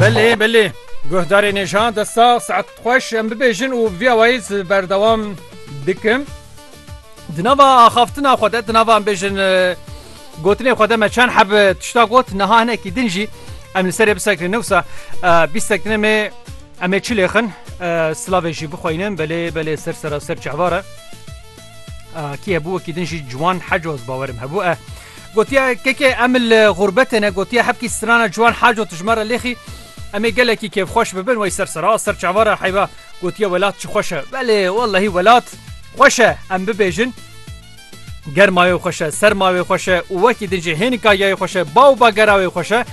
Belê belê guhdarê nêjan de sax saet xweş em bibêjin û vîya wayî berdewam bikim. Di nava axaftina xwe de di nava em bêjin gotinê xwe de me çend heb tişta got niha hinekî din jî em li serê bisekrin newsa bîstek dine me em ê çilêxin silavê jî bixweynin belê belê ser sera ser çehvara. کی hebû wekî din jî ciwan hecoz bawerim hebû e gotiya kekê em li xûrbetê ne gotiya hebkî strana ciwan heco tu ji me re lêxî em ê gelekî kêfxweş bibin wey ser sera ser çava re heyva gotiye welat çi xweş e belê wellehî welat xweş e em bibêjin germayê xweş e sermayê xweş e û wekî din jî hênika yayê xweş e baw bagera wê xweş e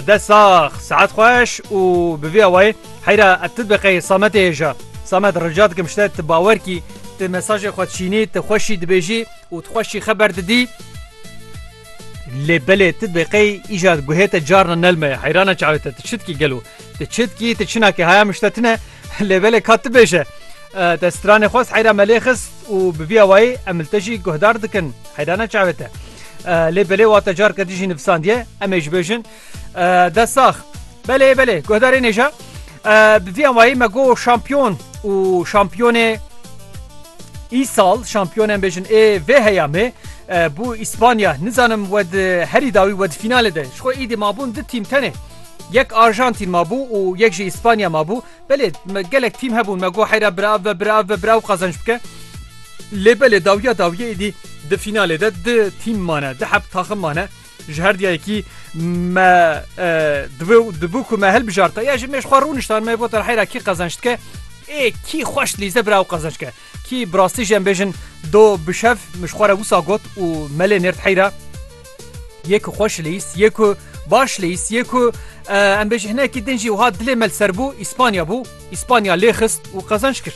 Dest sax, saet xweş û bi vî awayê heyra ev tu diqeyê Sametê hêja. Samet rica dikim ji te tu bawer kî tu mesajê xwe çînî tu xweşî dibêjî û tu xweşî xeber didî lê belê tu diqey îja guhê te carna nelme ye heyrana çavê te tu çi dikî gelo tu çi dikî tu çinakî haya min ji te tune lê belê ka tu bêje te stranê xwest heyra me lê xist Û bi vî awayî em li te jî guhdar dikin heyrana çavê te. Lê belê wate carke din jî nivisandiye em ê ji bêjin dest sax. Belê belê guhdarê nêja bi vî awayî me got şampiyon û şampiyonê îsal şampiyon em bêjin ê vê heyamê bû îspanya nizanim we herî dawî we di fînalê de ji xwe îdî mabûn di tîm tenê yek arjantîn mabû û yek jî îspanya mabû Belê me gelek tîm hebûn me got heyra bira ev ve bira ev ve bira ew qazanc bike. Lê belê dawiya dawiyê êdî di fînalê de di tîm mane di heb taxim mane ji her diya yekî me dibû ku me hilbijarte ya ji mêj xwe rûniştan me gotin heyra kî qazanc dike ê kî xweş lîze bira ew qazanc ke kî bi rastî jî em bêjin do bişev min ji xwe re wisa got û melê nêrt heyra Yê ku xweş lîst, yê ku baş lîst, yê ku em bêjî hinekî din jî wiha dilê me li ser bû, Îspanya bû, Îspanya lê xist û qezanc kir.